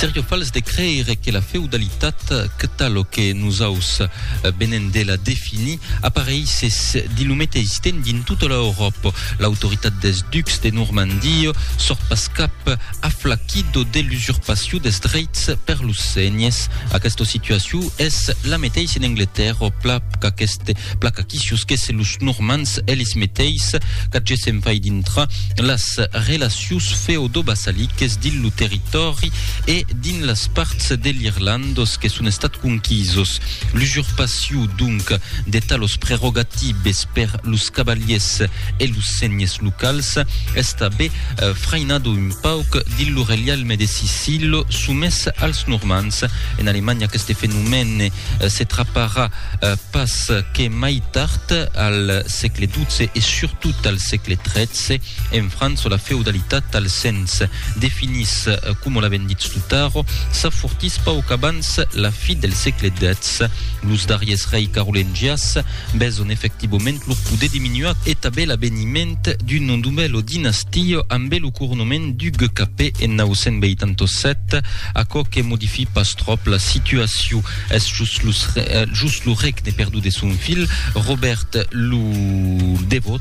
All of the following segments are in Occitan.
Sergio Fals de creire que la feudalitat, que talo que nosaus venem de la definir, apareissés dins lo meteis temps dins tota l'Euròpa. L'autoritat dels ducs de Normandia sort pas cap aflaquido de l'usurpacion dels dreits per los senhes. Aquesta situacion es la meteis en Angletèrra, pla qu'aqueste, pla qu'aquí siusquèsse los Normands elis meteis, qu'agessem fai dintrar las relacions Latius feodobassaliques dins lo territòri e dins las parts de l'Irlandos que son estat conquisos. L'usurpaciu, donc, de talos prerogatibes per los cavaliers e los senhes locals es tabé frainado un pauc dins lo relialme de Sicilo somés als Normands. En Alemanha aqueste fenomène se traparà pas que mai tard, al sègle xii e surtot al sègle xiii. En França, la feudalitat, al sens definís coma l'avèm ditz tot ara, s'afortís pauc abans la fi del sègle xix. Los darriers rei carolengias beson efectivament lor poder diminuat e tanben l'aveniment d'una novèla dinastia ambe lo coronament duc cap en 987, aquò que modifí pas tròp la situacion. Es just lo regne perdut de son filh Robèrt lo Devot.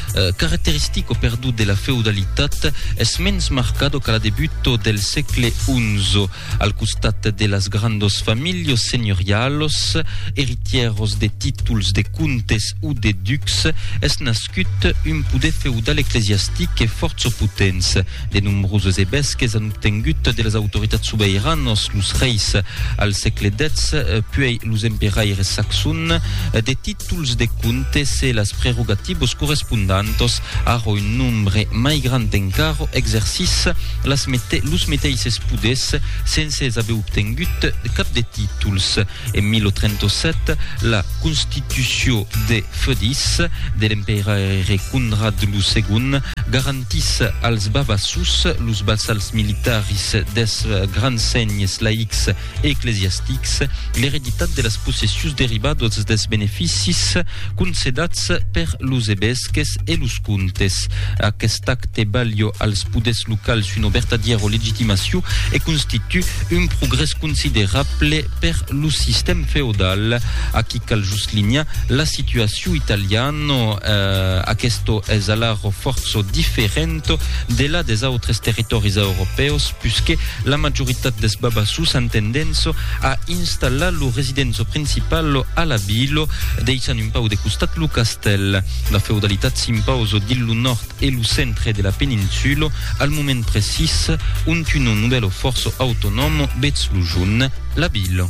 Caracteristic o perdut de la feudalitat, es mens marcado qu'a la debuto del sègle XI. Al costat de las grandos familhos senhorialos, eritieros de títols de comtes o de ducs, es nascut un poder feudal eclesiastic e fòrça potents. De nombroses evesques an obtengut de las autoritats sobeiranos, los reis al sègle X, puèi los emperaires saxons, de títols, tols de comptes e las prerogativos correspondantos ara un nombre mai grand encara exercís las mete los meteisses poders sense aver obtengut cap de títols. En 1037, la constitució de feudis de l'emperaire Conrad lo Segond garantís als Vavassos, los vassals militaris deth grand senhes laics eclesiastics, l'ereditat de las possessions derivadas dels beneficis concedats per los evesques e los comtes. Aquest acte balha als poders locals una vertadièra legitimacion e constitu un progrès considerable per lo sistèm feodal. Aquí cal just linhar la situacion italiana, aquesta es alara fòrça diferenta de la des autres territòris europèus, puisque La majoritat des Babassus an tendénça a installar lo residenço principal a la vila, deishant un pau de costat lo castèl. La feudalitat s'impausa dins lo nòrd e lo centre de la peninsula al moment precís ont un nobèlo fòrça autonòm vètz lo junh la vila.